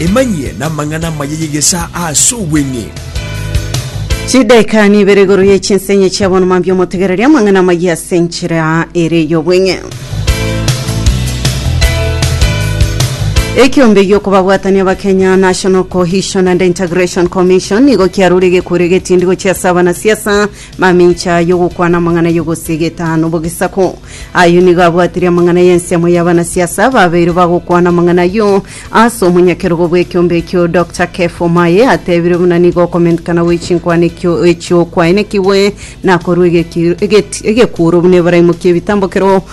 Emanyie namang'ana amaya y'egesaa ase obweng'e. Chidaika nibere igoro ye chinsenye chia bonoma mbia omotegereria amang'ana amaya ase enchera ere y'obweng'e. Ekiombe giokobabwatania Abakenya National Cohesion and Integration Commission nigo kiarure egekweri egetindi gochia ase abanasiasa Mamincha y'ogokwana amang'ana y'ogosiegeta n'obogisako. Ayio nigo abwatirie amang'ana y'ensiamo y'abanasiasa ababeire bagokwana amang'ana ayio ase omonyakerogo bw'ekiombe ekio. Dr. Kev Omae atebire buna nigo okomentikana gwe chinkwana ekio echio kwaenekigwe na korwa egeki- egeti- egekuuro buna Ebrahimu ki'ebitambokero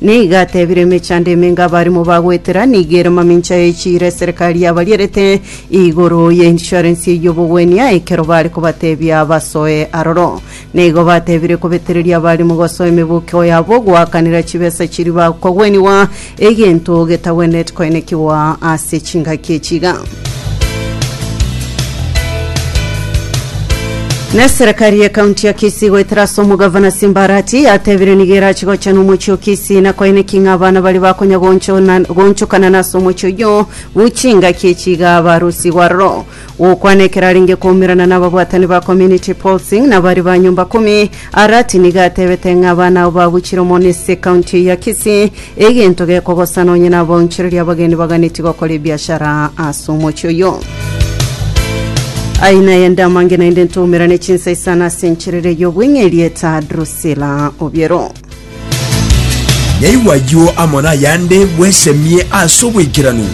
Nigo atebirie emechando emenge abarimo ba goetera, nigo ere mamincha ye chiira eserekari yabarierete igoro ye insurance y'obogwenia ekero bare kobatebia basoe aroro. Nigo batebirie kobetereria abarimo gosoa emebokio yabo goakanera chibesa chiria bakogwenigwa, egento getagwenereti koenekigwa ase chingaki echi iga. Na eserekari ye county ya Kisii goetera ase omogavana Simbarati yatebire nigo erachi gochana omochie o Kisii na koeneki ng'a abana bari bakonya gonchona- gonchokana na ase omochie oyio bu chingaki echi iga barusigwe aroro. Gokwana ekero arenge koumerana na ababwatani ba community policing na bari ba nyomba kumi Arati nigo atebete ng'a abana abo babuchire omono ase ekaunti eye ya Kisii, egento gekogosana onye nabaonchoreria abageni baganeti gokora ebiashara ase omochie oyio. Aye naende amange naende ntoumera ne chinsai sana ase encherere y'obweng'e erieta Drusilla Obiero. Naigwa ayio amo nayande bwesemie ase oboikeranu.